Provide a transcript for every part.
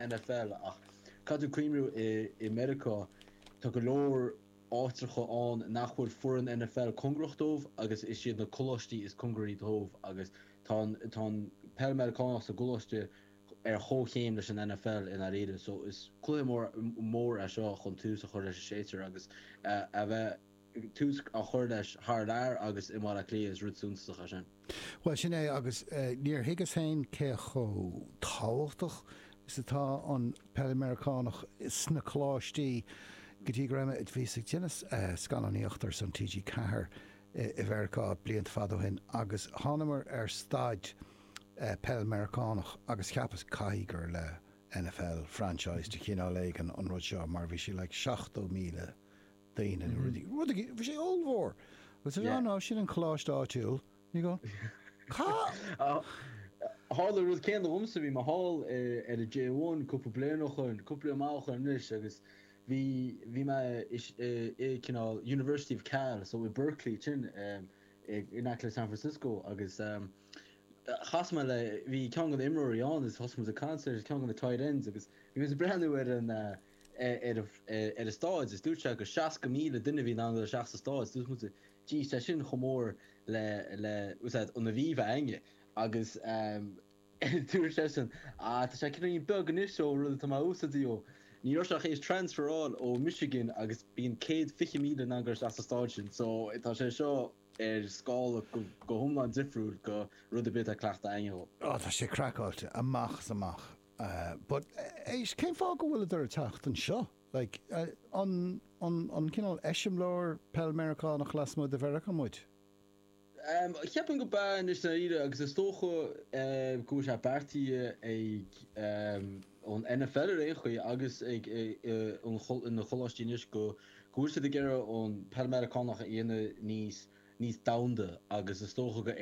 NFL Ach caithfidh tú cuimhniú i Meiriceá? Tá go leor áitreacha ann nach bhfuil foireann NFL cóngarach dóibh agus is iad na coláistí is cóngaraí dóibh agus tá an tá an peil Meiriceánach sa gcoláiste ar chomhchéim leis an NFL i ndáiríre so is cluiche mór mór é seo chun tús a chur leis an séasúr agus a bheith tús a chur leis thar lear agus i mBaile Átha Cliath, is rud suntasach é sin. Bhuel, sin é, agus níor thuigeas féin cé chomh tábhachtach is atá an Peil Mheiriceánach sna coláistí go dtí go raibh mé, bhíos ag déanamh scannánaíocht ar son TG Ceathair i Mheiriceá blianta fada ó shin agus thángamar ar staid Peil Mheiriceánach agus cheapas, caithfidh gur le NFL franchise de chineál éigin an rud seo mar bhí sé like seachtó míle duine nó rud éigin. Rud a, bhí sé ollmhór agus arsa, no, sin an coláiste áitiúil, ní go, cá. Tharla an rud céanna dhomsa, bhí mé thall ar an J1 cúpla bliain ó shoin, cúpla bliain mhaith ó shoin anois agus bhí, bhí mé i cineál University of Cal, so i Berkeley ansin in aice le San Francisco agus chas mé le, bhí ceann de na imreoirí ann agus thosaigh muid ag caint, ceann de na tight ends agus bhí muid ag breathnú ar an, ar an staid is dúirt sé gur 60,000 duine a bhí in ann dul isteach sa staid. Dúirt muid, Jeez, tá sin chomh mór le, leis an staid, an Aviva againne. Agus dúirt seisean, Ah, tá sé cineáilín beag anois ón rud atá mé used to, ní raibh sé ach théis transferáil ó Michigan agus bíonn céad fiche míle in ann dul isteach sa staid sin so tá sé seo ar scála go hiomlán difriúil go rud ar bith atá cleachtaithe againne. Ó. Á, tá sé craiceáilte amach 's amach. Uh, but, éist, cén fáth go bhfuileadar a' teacht anseo? Like, an, an, an cineál eiseamláir peil Meiriceánach lasmuigh de Mheiriceá muid? Um, cheapfainn gurb ea anois dáiríre agus is dócha, eh, go bhfuil sé beartaithe ag, um, an NFL ar aon chaoi agus ag, eh, eh, an chol, na coláistí anois go, go bhfuil siad ag iarraidh an peil Meiriceánach a dhéanamh níos, níos domhanda agus is dócha gur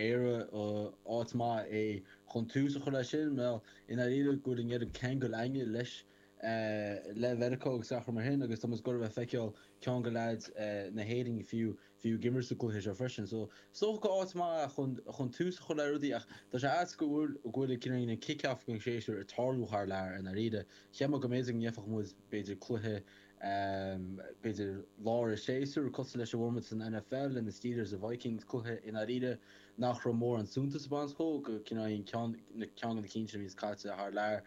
áit mhaith é chun tús a chur leis sin. I ndáiríre go bhfuil in Éirinn ceangal againne leis le Meiriceá agus araile mar sin agus tá muid ag goil a' feiceáil ceann de leaids na hÉireann fiú fiú ag imirt sa gcluiche seo freisin. So is dócha gur áit mhaith é chun chun tús a chur le rudaí ach tá sé ait go bhfuil go bhfuil an kick off den séasúr ag tarlú thar lear i ndáiríre. Cheapfá go mb'fhéidir go ngeofadh muid b'fhéidir cluiche b'fhéidir lár a' séasúir, cosúil leis an bhformáid san NFL le na Steelers, na Vikings, cluiche i ndáiríre nach raibh mórán suntais ag baint leo, go cineál an ceann, na, ceann de na cinn sin a bhíos caite thar lear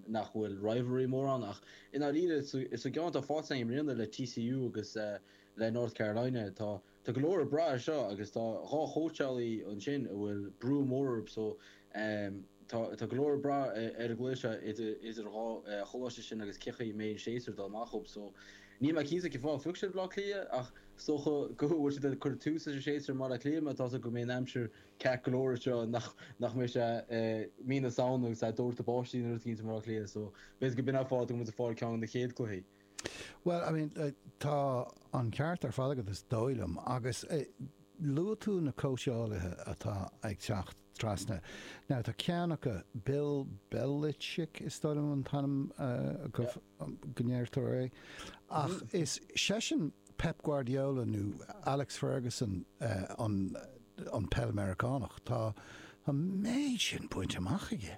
nach bhfuil rivalry mórán ach i ndáiríre sa, sa gceann atá faighte againn i mbliana le TCU agus le North Carolina tá, Tá go leor ag brath ar seo agus tá dhá chóitseálaí ansin a bhfuil brú mór orthu so tá tá go leor ag brath ar an gcluiche seo idir an dá choláiste sin agus cén chaoi a mbeidh an séasúr dul amach acu so níl mé cinnte cén fáth a phioc siad Bleá Cliath ach is dócha go bhfuil siad ag cur tús leis an séasúr i mBaile Átha Cliath mar tá seans go mbeidh an aimsir ceart go leor anseo nach nach mbeidh sé mí na Samhna agus ag dórtadh báistí agus rudaí i mBleá Cliath so b'fhéidir go b'in an fáth go bhfuil siad ag fáil ceann de na chéad cluichí. Bhuel, I mean, tá an ceart ar fad agat is dóigh liom. Agus luaigh tú na cóitseálaithe atá ag teacht trasna. Now, tá ceann acu, Bill Belichick, is dóigh liom an t-ainm go ndeirtear é, ach is seisean Pep Guardiola nó Alex Ferguson an peil Meiriceánach. Tá, tá an méid sin bainte amach aige!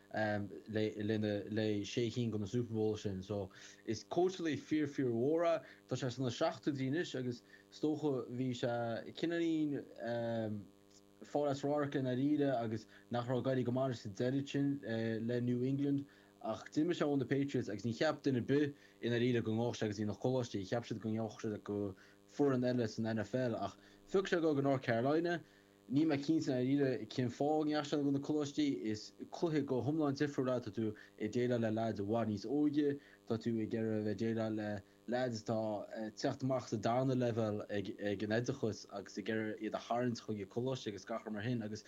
leis na sé cinn de na Super Bowl sin. So, is cóitseálaí fíor fíor mhór é. Tá sé sna seachtóidí anois agus is dócha bhí sé cineáilín fáil as radharc i ndáiríre agus nach raibh ag éirí go maith leis sa deireadh sin le New England. Ach d'imigh sé ón, the Patriots agus ní cheap duine ar bith i ndáiríre go ngabhfadh sé go dtí na coláistí. Cheap siad go ngabhfadh sé go foireann eile san NFL ach phioc sé dhul go North Carolina. Níl mé cinnte i ndáiríre cén fáth a ndeachaigh sé go dtí na coláistí. Is cluiche go hiomlán difriúil é, tá tú ag déileáil le leaids i bhfad níos óige. Tá tú ag iarraidh a bheith ag déileáil le leaids atá ag teacht amach as an darna leibhéal den oideachas agus ag iarraidh iad a tharraingt chuig an coláiste agus gach rud mar sin agus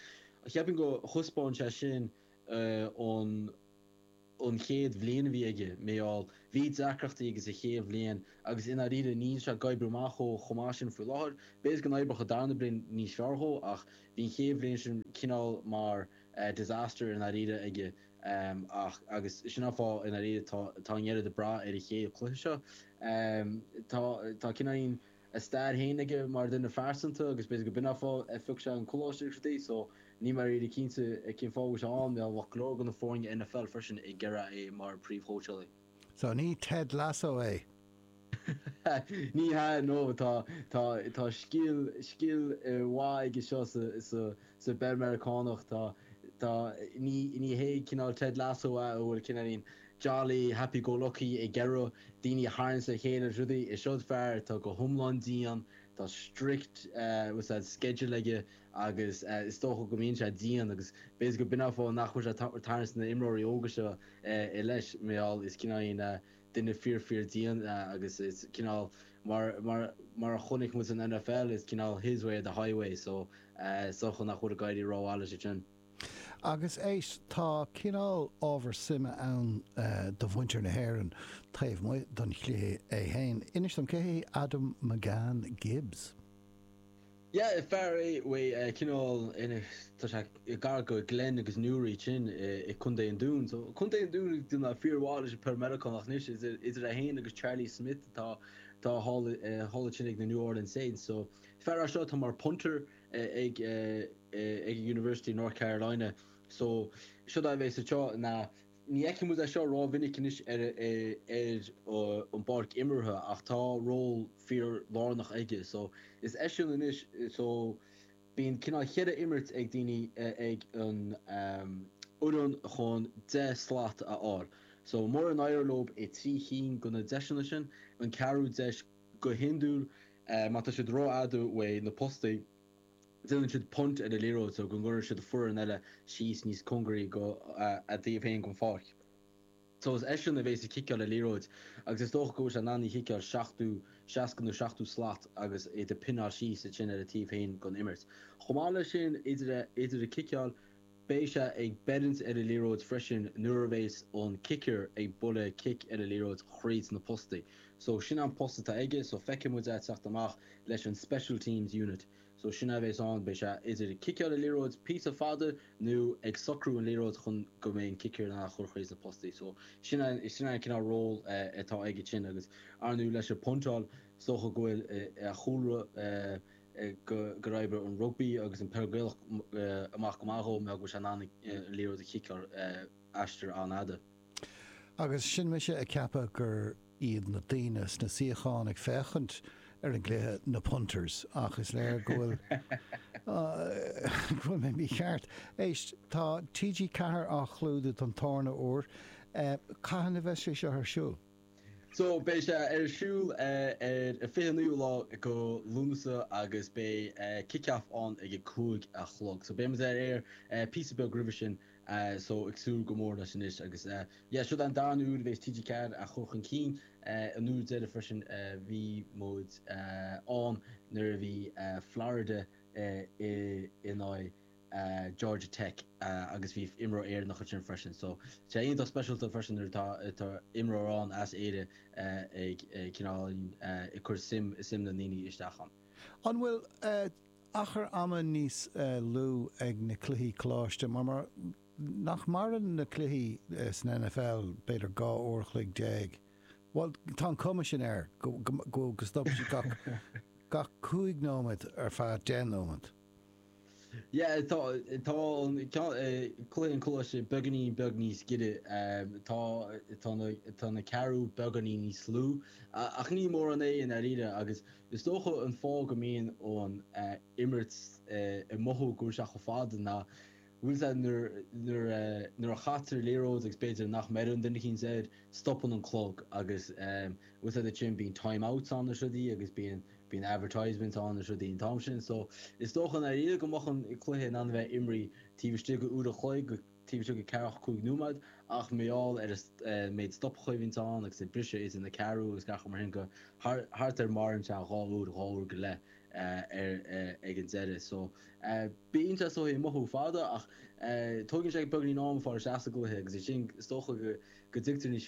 cheapfainn gur thaispeáin sé sin an an chéad bhliain a bhí aige, mar gheall, bhí deacrachtaí aige sa chéad bhliain agus i ndáiríre níl sé ag oibriú amach chomh chomh maith sin faoi láthair, b'fhéidir go n-oibreoidh an darna bliain níos fearr dhó ach bhí an chéad bhliain sin cineál mar disaster i ndáiríre aige ach agus sin an fáth i ndáiríre tá tá an oiread ag brath ar an gcéad chluiche seo tá tá cineáilín a stair féin aige mar dhuine phearsanta agus b'fhéidir go b'in fáth ar phioc sé an coláiste agus rudaí so níl mé ríli cinnte cén fáth a bhfuil sé ann, mar bheadh go leor de na foirne NFL freisin ag iarraidh é mar phríomhchóitseálaí. So ní Ted Lasso é? Ní hea no tá tá tá scil an-mhaith aige seo sa sa sa bpeil Meiriceánach tá tá ní ní hé cineál Ted Lasso é a bhfuil cineáilín Jolly, happy-go-lucky, ag iarraidh daoine a tharraingt le chéile, siúd, is fear atá go hiomlán dian, tá strict schedule aige agus is dócha go mbíonn sé dian agus b'fhéidir go b'in an fáth nach bhfuil sé ag tarraingt na n-imreoirí óga seo leis, mar gheall, is cineál, you know, duine fíor fíor dian é agus is cineál mar, mar, mar a chonaic muid san NFL, is cineál his way or the highway so, is dócha nach bhfuil ag éirí ró-mhaith leis ansin. Agus éist, tá cineál ábhar suime ann do mhuintir na hÉireann taobh amuigh den chluiche é fhéin. Inis dom, cé hé Adam McCann Gibbs? Yeah, fear é cineál, tá sé gar go Glenn agus Newry, sin i Contae an Dúin. So, Contae an Dúin go fíormhaith ag peil Meiriceánach. Anois, idir é fhéin agus Charlie Smyth atá thall ansin ag na New Orleans Saints. So, fear as seo atá mar punter. ag ag University North Carolina so seod é beidh sa tseó ní fheiceann muid é seo rómhinic anois ar ar an bpáirc imeartha ach tá ról fíor lárnach aige so is eisean anois so bíonn cineál cheithre imirt ag daoine ag an fhoireann chun deich slat a fháil so mura n-éireoidh leo i trí cinn go na deiseanna sin an ceathrú deis Go hiondúil, má tá siad rófhada uaidh na postaí, déanann siad punt ar an liathróid so go gcuireann siad foireann eile síos níos cóngaraí go a dtaobh féin den pháirc. So is eisean a bhéas ag ciceáil an liathróid agus is dócha go bhfuil sé in ann í a chiceáil seachtú, seasca nó seachtú slat agus iad a phinneáil síos ansin ar a dtaobh féin den imirt. Chomh maith leis sin, idir a, idir a ciceáil, Beidh sé ag breith ar an liathróid freisin nuair a bheas an kicker ag bualadh cic ar an liathróid thríd na postaí. So, sin an post atá aige, so feicfidh muid é ag teacht amach leis an special teams unit. So, sin é a bheas ann, beidh sé idir ag ciceáil an liathróid píosa fada nó ag socrú an liathróid chun go mbeidh an kicker in ann í a chur thríd na postaí. So, sin é, sin é an cineál ról atá aige sin agus, arnú, leis an puntáil, is dócha go bhfuil a chúlra, gur oibrigh an rugbaí agus an peil Gaelach amach go maith dhó agus é in ann an liathróid a chiceáil aistear an-fhada. Agus sin mise ag ceapadh gur iad na daoine sna suíocháin ag féachaint ar an gcluiche na punters, ach is léir go bhfuil mé mícheart. Éist, tá TG4 á chlúdach don darna huair, cathain a bheas sé seo ar siúl? So, beidh sé ar siúl ar an 29ú lá go Lúnasa agus beidh kick-off ann ag a cúig a chlog. So, beidh muid ar aer píosa beag roimhe sin. So, ag súil go mór leis anois agus yeah, seo an darna huair a bheas TG4 á chur chun cinn. An uair deireadh freisin a bhí muid ann nuair a bhí Florida in aghaidh. Georgia Tech agus bhí imreoir Éireannach ansin freisin so tá sé iontach speisialta freisin nuair atá atá imreoir ann as Éirinn ag cineál ag cur suim i suim na ndaoine isteach ann. An bhfuil achar ama níos lú ag na cluichí coláiste mar mar nach maireann na cluichí san NFL b'fhéidir dhá uair a chloig déag bhuel tá an cuma sin air go go go go stopann siad gach gach cúig nóiméad ar feadh deich nóiméad. Yeah, tá, tá an ceann, cluiche an choláiste beagáinín beag níos giorra, tá, tá na, tá na ceathrú beagáinín níos lú, ach ní mórán é i ndáiríre agus is dócha an fáth go mbíonn an imirt ag mothú go bhfuil sé chomh fada ná, Bhfuil a fhios agat, nuair a chaitear liathróid agus b'fhéidir nach mbeireann duine eicínt air, stopann an clog agus bhfuil a fhios agat ansin bíonn time outs ann is rudaí agus bíonn advertisements ann is rudaí an t-am sin so is dócha i ndáiríre go mbeadh an cluiche in ann a bheith imrithe taobh istigh de uair an chloig go taobh istigh de ceathracha cúig nóiméad ach mar gheall ar an méid stopachaí a bhíonn ann agus an briseadh idir na ceathrú agus gach rud mar sin go thart ar maireann sé dhá uair, dhá uair go leith. air ag an deireadh so bíonn sé ag mothú fada ach tógann sé beagáinín ama fáil isteach sa gcluiche agus ansin is dócha go dtuigtear níos